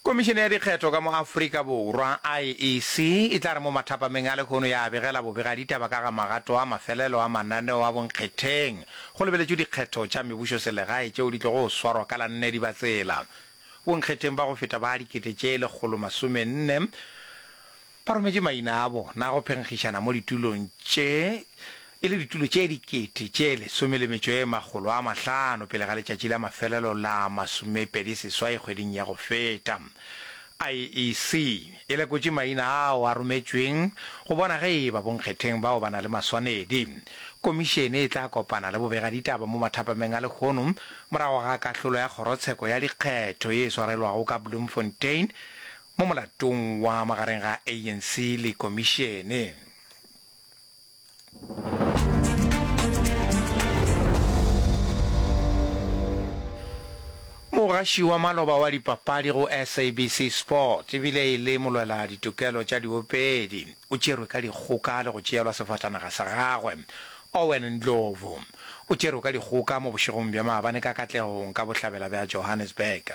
Komišene ya Dikgetho ka mo Afrika Borwa, IEC, e tla re mo mathapameng a lehono ya begela bobegaditaba ka ga magato a mafelelo a mananeo a bonkgetheng go lebeletšwe dikgetho tša mebušoselegae tšeo di tlogo go swarwa ka la nne Dibatsela. Bonkgetheng ba go feta ba dikete tše lekgolo masome nne, Ba rometše maina a bona a go phenkgišana mo ditulong tše, e le ditulo tše dikete tše lesome le metšo e makgolo a mahlano pele ga letšatši la mafelelo la masomepedi seswai kgweding ya go feta. IEC e lekotše maina ao a rometšweng go bona ge eba bonkgetheng bao ba na le maswanedi. Komišene e tla kopana le bobegaditaba mo mathapameng a lehono morago ga kahlolo ya kgorotsheko ya dikgetho ye e swarelwago ka Bloemfontein mo molatong wa magareng ga ANC le Komišene. Mogaši wa maloba wa dipapadi go SABC Sport e bile e le molwela ditokelo tša diopedi o tšerwe ka dikgoka le go tšeelwa sefatanaga sa gagwe. Owen Ndlovu o tšerwe ka dikgoka mo bošegong bja maabane ka katlegong ka bohlabela bja Johannesburg.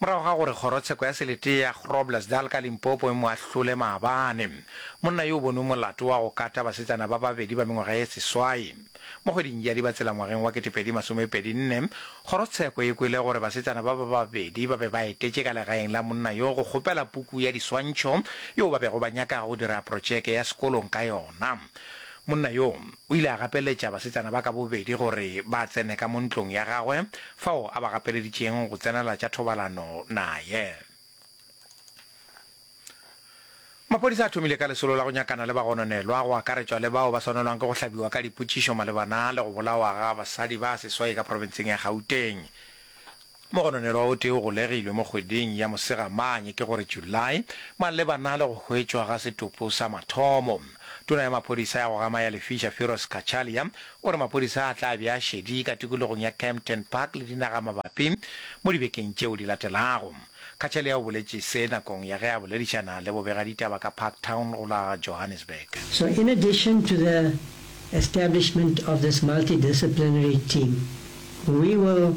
morago ga gore kgorotsheko ya selete ya Groblersdal ka Limpopo e mo ahlole maabane. Monna yo o bonwe molato wa go kata basetsana ba babedi ba mengwaga ye seswai. Mo kgweding ya Dibatsela ngwageng wa 2024, kgorotsheko e kwele gore basetsana ba ba babedi ba be ba etetše ka legaeng la monna yo go kgopela puku ya diswantšho yeo ba bego ba nyaka go dira protšeke ya sekolong ka yona. Monna yo o ile a gapeletša basetsana ba ka bobedi gore ba tsene ka mo ntlong ya gagwe fao a ba gapeleditšeng go tsenela tša thobalano naye. Maphodisa a thomile ka lesolo la go nyakana le bagononelwa, go akaretšwa le bao ba swanelwang ke go hlabiwa ka dipotšišo malebana le go bolawa ga basadi ba seswai ka profenseng ya Gauteng. Mogononelwa o tee o golegilwe mo kgweding ya Mosegamanye, ke go re July, malebana le go hwetšwa ga setopo sa mathomo. Tona ya maphodisa ya go gama ya Lefisha, Firoz Cachalia, o re maphodisa a tla be a šedi ka tikologong ya Kempton Park le dinagamabapi mo dibekeng tšeo di latelago. Cachalia o boletše se nakong ya ge a boledišana le bobegaditaba ka Parktown go la Johannesburg. So in addition to the establishment of this multidisciplinary team, we will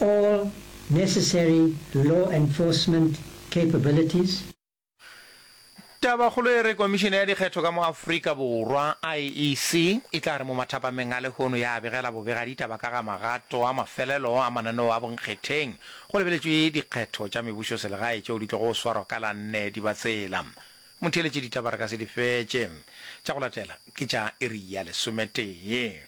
all necessary law enforcement capabilities. Tabakgolo e re Komišene ya Dikgetho ka mo Afrika Borwa, IEC, e tla re mo mathapameng a lehono ya begela bobega ditaba ka ga magato a mafelelo a mananeo a bonkgetheng go lebeletšwe dikgetho tša mebušoselegae tšeo di tlogo swarwa ka la nne Dibatsela. Motheeletše ditaba re ka se di fetše. Tša go latela ke tša iri ya lesometee.